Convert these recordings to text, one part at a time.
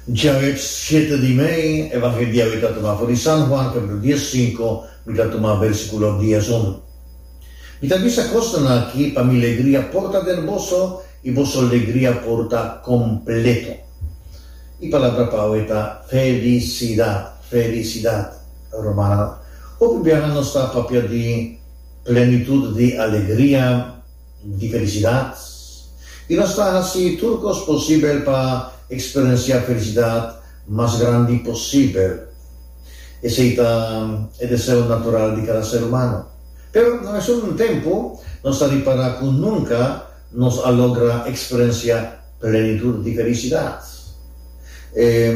Djaweb siete di mei, Evangelio di awe ta tuma for di San Juan, capitulo dies sinku, mi ta tuma versiculo dies unu. Mi ta bisa cosnan aki pa mi legria por ta den boso y boso legria por ta completo. E palabra pa awe ta felicidad, felicidad. Romana, hopi biaha nos ta papia di plenitud di alegria. di felisidat. I nos ta hasi tur kos posibel pa eksperensiá felisidat mas grandi posibel. Esei ta e deseo natural di kada ser humano. Pero na mesun tempu, nos ta ripará ku nunka nos a logra eksperensiá plenitud di felisidat.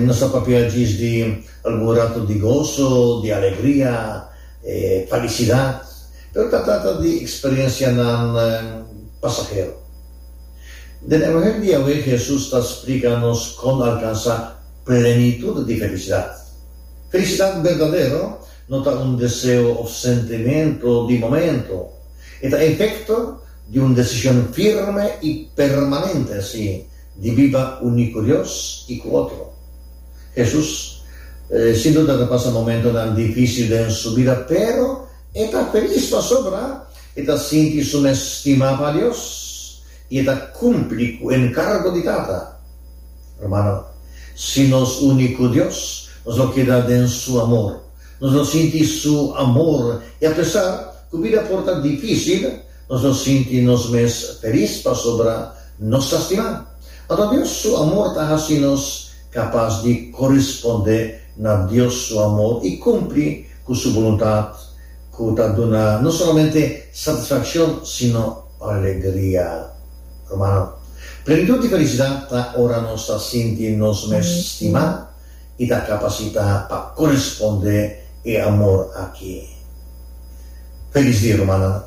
Nos ta papia djis di algun ratu di goso, di alegria, falisidad. Pero ta trata di eksperensianan pasahero. Den evangelio di Yahweh Hesus ta splika nos kon alkansá plenitud di felisidat. Felisidat berdadero no ta un deseo òf sentimentu di momentu. E ta efekto di un desishon firme i permanente así di biba uní ku Dios i ku otro. Hesus sin duda ta pasa momentunan difísil den su bida, pero E ta felis pasobra e ta sinti su mes stima pa Dios i e ta kumpli ku e enkargo di Tata. Hermano, si nos uni ku Dios, nos lo keda den su amor. Nos lo sinti su amor i apesar ku bida por ta difísil, nos lo sinti nos mes felis pasobra nos ta stimá. Anto Dios su amor ta hasi nos kapas di korisponde na Dios su amor i kumpli ku su boluntat ku ta duna no solamente satisfakshon sino alegria. Hermano, plenitud di felisidat ta ora nos ta sinti nos mes stima i ta kapasitá pa korisponde e amor aki. Felis dia, rumannan!